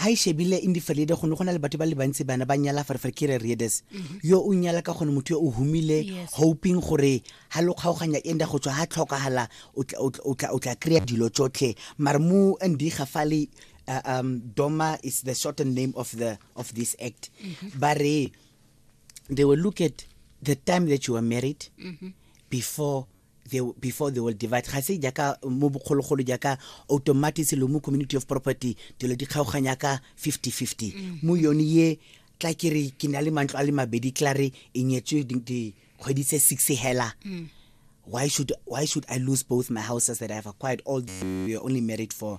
ha e shebile indi feride go ne go na le batho ba le bantsi bana ba nyala fa re fere kere riedes mhm. yo o nyala ka gone motho yo o humile hoping gore ha lo kgaoganya e nda go tswa ha tlhokagala o tla o tla kry-a dilo tsotlhe mare mo ndi ga fale uh, um, doma is the shortened name of the of this act mm -hmm. ba re they will look at the time that you were married mm -hmm. before the, before the world divide ga se jaaka mo bogologolo jaaka automatic lo mo community of property dilo di kgaoganya ka 50-50 mm. mo yone ye tla ke re ke na le mantlo a le mabedi tla re e nyetswe dikgwedi tse six hela mm. why should why should i lose both my houses that i have acquired all we are only married for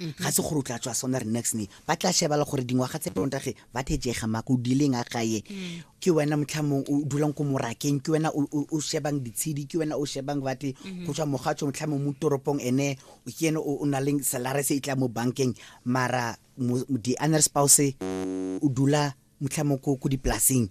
ga se gore o tla tswa sona re next ne ba tla shebala gore dingwaga tse pontage ba thejega mako o dileng a gae mm. ke wena motlhamong o dulang ko morakeng ke wena o shebang ditshedi ke wena o shebang bate mm-hmm. go tswa mogatso motlhamong mo toropong ene ke ene o na leng salare se e tla mo bankeng mara di-honor spouse o dula mutlhamoko ko dipolaseng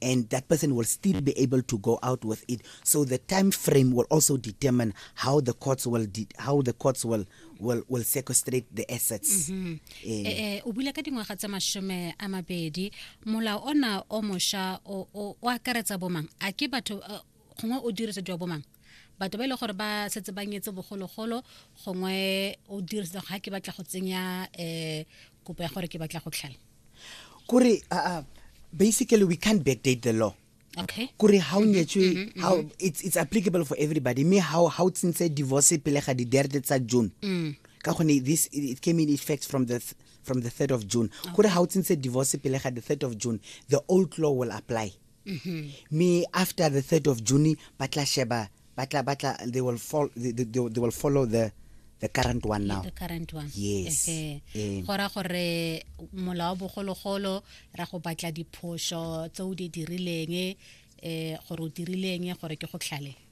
and that person will still be able to go out with it so the time frame will also determine how the courts will how the courts will will, will sequestrate the assets mm -hmm. eh. Eh, eh, o bula ka dingwaga tsa mashome a mabedi molao ona o mosha o akaretsa bomang a ke batho uh, gongwe o dirisediwa bomang batho ba e le gore ba setse ba nyetse bogologolo gongwe o dirisetsa ga ke batla go tsenya um kopo ya gore ke batla go tlhala kore uh, basically we can't backdate the law okay kore ha o mm-hmm, nyetswe mm-hmm, how mm-hmm. it's it's applicable for everybody me how how tsintse divorce pele ga di date tsa June mm. ka gone this it came in effect from the th from the 3rd of June kore ha o tsintse divorce pele ga the 3rd of June the old law will apply mm-hmm. me after the 3rd of june ba tla sheba ba tla ba tla they will follow they, they, they will follow the the current one now the current one yes eh, eh. go ra gore mola wa bogologolo ra go batla diphoso tse o di dirileng eh gore o dirileng gore ke go tlhale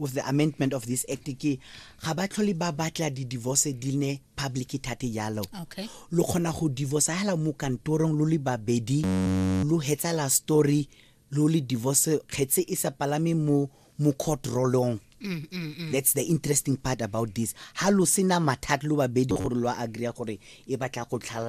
with the amendment of this act ke ga ba tlhole ba batla di-divorce di ne public thate jalo okay. lo kgona go divorce hela mo kantorong lo le babedi lo hetsala story lo le divorce kgetse e sa palame mo mo court rolong mm, mm, mm. that's the interesting part about this ha lo sena mathata lo babedi gore lo agree gore e batla go tlhalana